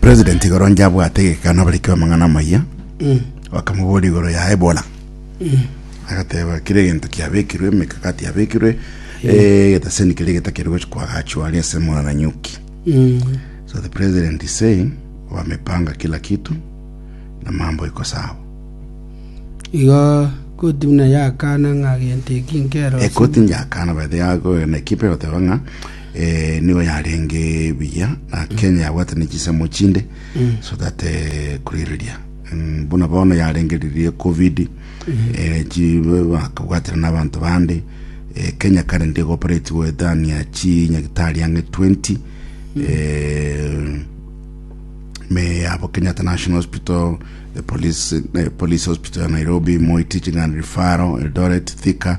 president igoro njabwate egekano abariki b'amang'ana amaya bakamobora igoro ya ebola agateba kire egento kiabekirwe emekakati yabekirwe eh, egetaseni kere getakeri gochi kwagachwa ari ase mwana na nyuki so the president is saying wamepanga kila kitu na mambo iko sawa igo koti buna yakana ng'a gento eki nkero ekoti njakana bathi yago na ekipe egoteba ng'a eh, nigo yarenge buya na kenya yabwate ne chisemo chinde so that eh, kurireria Mm, buna bono yarengeririe covid eh, chi- bakabwatera n'abanto bande eh, kenya kare ndi goperatiwe than ya chi nyagitari ang'e 20 eh, me yabo kenyatta national hospital the police, eh, police hospital ya nairobi moi teaching and referral eldoret thika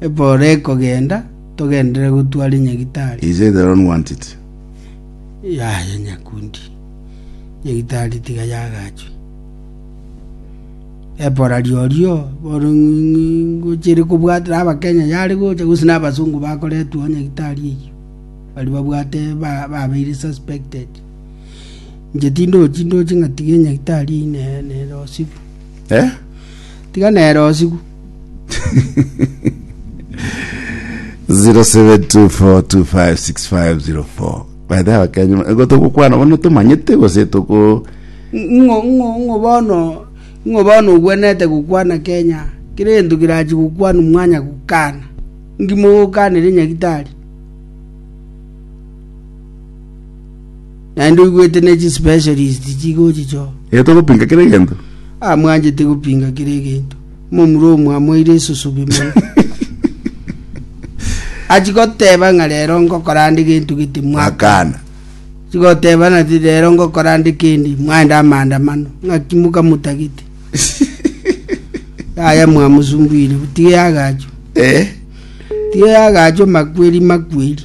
Epooro ekogenda, togenderere gotwara nyagitari. He said, I don't want it. Yaya nyakundi. Nyagitari tiga yagachwe. Epora riorio bono ng- ngochire kobwatera abakenya yare gocha gose n'abasungu bakoretwa nyagitari eyio bari babwate ba- babeire suspected inche tindochi ndoche ng'a tiga enyagitari ine nere osigu Eh? tiga nere osigu 0724256504 baita abakenya ego togokwana bono tomanyete gose toko ng'o ng'o ng'o bono ng'o bono ogwenete gokwana kenya kere gento kerachi gokwana mwanya gokana ngimo gokanire nyagitari Naende oigwete ne chispecialist chigochicho. Ee, togopinga kera egento. Amwanchete gopinga kera egento. Omomura omo amoeire esusubi mono. Achigoteba ng'a rero ngokora ande gento gete mwaka. Akana. Chigoteba nati rero ngokora ande kendi mwaenda amaandamano. Ng'aki mokamotagete. Yaya mwamusumbuire. Tiga yagacho. Ee. Tiga yagacho makweri makweri.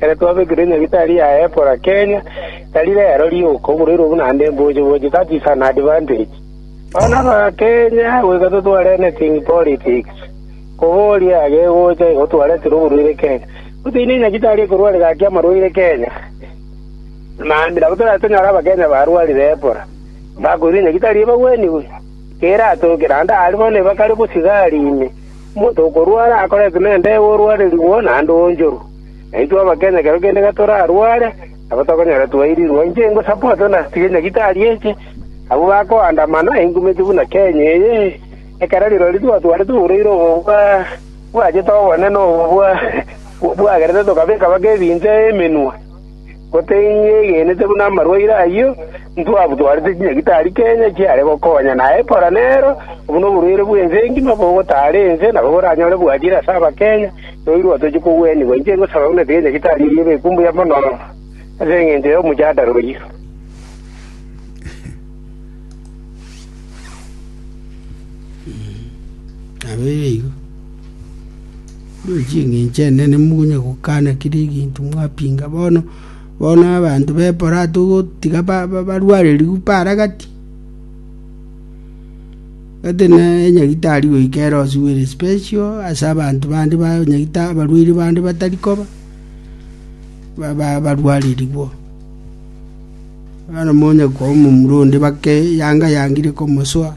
Ekero twabekire nyagitari ya Ebola Kenya, tari rero rioka oborairwe buna ande mboche boche, that is an advantage. Bono Abakenya goika totware anything politics, koboria gegocha igo twaretire oborwaire Kenya. Toteine nyagitari ekorware gaki amarwaire Kenya, naende nabo toratonyore Abakenya barwarire Ebola, bakoirwe nyagitari ebagweniwe, keratoke naende aria bono ebakare bosigari ime. Omonto okorwara akoretwe nende orwarerigwe naende oonchorwe, na intwe Abakenya ekero kende gatorarware, nabo tokonyora twairirwe. Inche ingo support ng'a tiga Nyagetari eche, abwo bakoandamana enkumete buna Kenya eye, ekero rirorio twatwarete oboreire obo bwa bwachete obonene obo bwa bwagerete tokabeka baka ebinto emenwa. Goteyegenete buna amarwaire ayio, ntwabutwarete chinyagitari Kenya chiare gokonya, na ekora nero obu noborwaire bw'ense engima bogotaara ense nabo boranyore bwachire ase Abakenya, noirwa otochie kogwenigwa. Inche ngosaba buna chinyagitari erio ebe ekumbuya mono ase engencho y'omojadara oyio. Korwa chingencho enene monya gokana kera eginto mwapinga. Bono bono abanto b'eporato ogotiga barwarerigwe para gati, gati na enyagitari goika erosiwe ere special ase abanto bande ba nyagitari abarwaire bande batari koba barwarerigwe. Bono monya kwa omomura onde bake yanga yangire komosoa.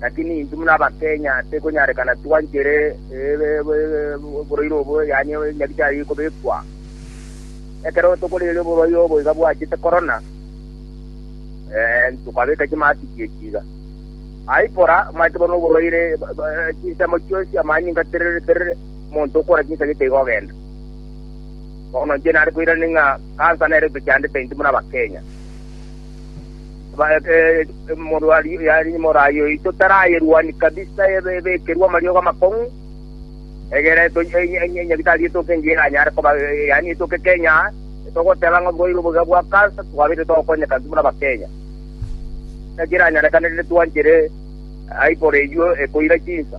Lakini intwe buna Abakenya tekonyarekana twanchere oboroiro obo, yaani nyabichari kobekwa. Ekero tokoreeria oborwaire obo iga bwachete korona, tokabeka chimasiki echi iga. Aikora, omanyete bono oborwaire, chinsemo chionsi, amanyinga terere terere, omonto okora chinsemo iga ogenda. Bono inche nare koirania ng'a cancer nere egochandete intwe buna Abakenya. Morwaria oito tarayerwani kabisa, ebekerwe amariogo amakong'u, egere nyabitari etoke engiya eranyare koba, yaani etoke Kenya, togoteba ng'a oboigo oboiga bwa cancer twabete togokonyeka intwe buna Abakenya. Naki eranyarekane rende twanchire aye igoro eywo ekoira chinsa.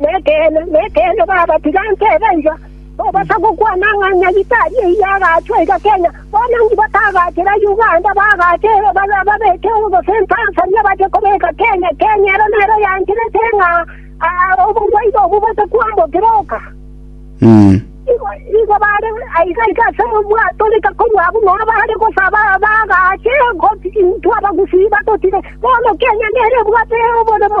Nekeene, nekeene, babatiga ntebe iga, tobasa gokwana ng'a Nyagetari eyi agachwa iga Kenya. Bono inki batagachera Uganda, bagache babeke gose Tanzania bache kobeka Kenya? Kenya ero nero yancherete ng'a oborwaire obo bosa kwambokire oka. Igo igo bare aiga iga ase obwato rika korwa abwo nonya bare gosaba bagache goti intwe abagusii batotire. Bono Kenya nero ebwate oboremo.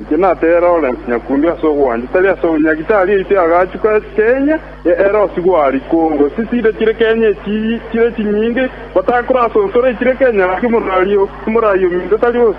Inche natee Lawrence nyakundi ase ogwancha, tari ase obunyaki, tari eite agachuka Kenya ya Erosi gwari Congo, ase chida chire Kenya echi chire chinyinge, batakorasonsora echire Kenya, naki morario minto tari ose.